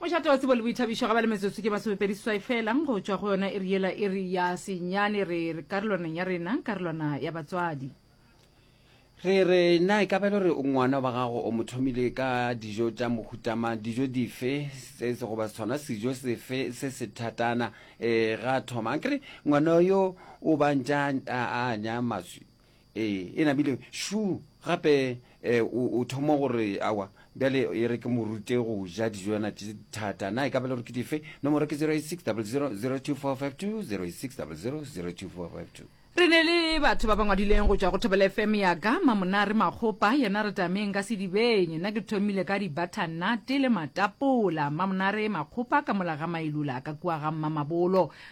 Mošate wa tsebo le boithabišo ga ba le metsotso ke masomepedi seswai fela go tšwa go yona iri yela iri ya senyane re re karolwaneng ya rena karolwana ya batswadi re re na e ka ba le gore ngwana wa gago o mo thomile ka dijo tša mohutama dijo dife se se goba sona sejo sefe se se thatana um ga thoma a kere ngwana yo o bantša a anya maswi Ee, e namile šu gape eh, o, o thomo gore awa bjale e re ke mo rute go ja dijo yana tše thata na e ka bele gore ke dife nomoro ke 08600002452060000245 re ne le batho ba ba ngwadileng go tšwa go thobela fm ya ka mamonare makgopa yena re tameng ka sedibeng nna ke thomile ka dibathannate le matapola mamonare makgopa ka mola ga mailula ka kua ga mmamabolo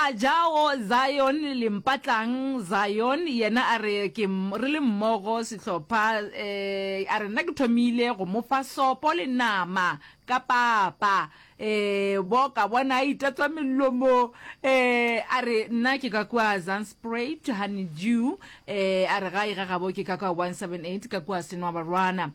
A jago Zion le mpatlang Zion yena a re ke re le mmogo sehlopha eh, a re nna ke thomile go mo fa sopo le nama ka papa eh, bo ka bona a itatswa melomo eh, a re nna ke ka kua Zanspruit honeydew eh, a re ga e ga gabo ke ka kua 178 ka kua Senwabarwana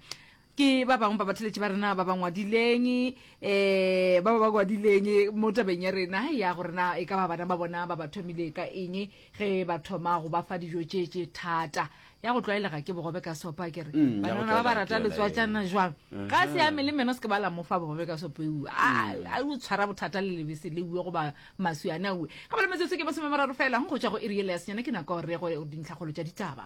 ke ba bangwe ba batheletši ba rena ba ba ngwadileng um ba ba ba ngwadileng mo tabeng ya rena ya gore na e ka ba bana ba bona ba ba thomile ka eng ge ba thoma go ba fa dijo tše tše thata ya go tlwaelega ke bogobe ka sopa ke re mm, banana ba ba rata letswatsana jwang ga se ya mele meno se ke ba la mofa bogobe ka sopa eue mm. a o tshwara bothata le lebese le ue goba maswi ane aue ga ba le metsotso ke masome mararo fela go tswa go e riele ya senyana ke nako re go dintlhakgolo tša ditaba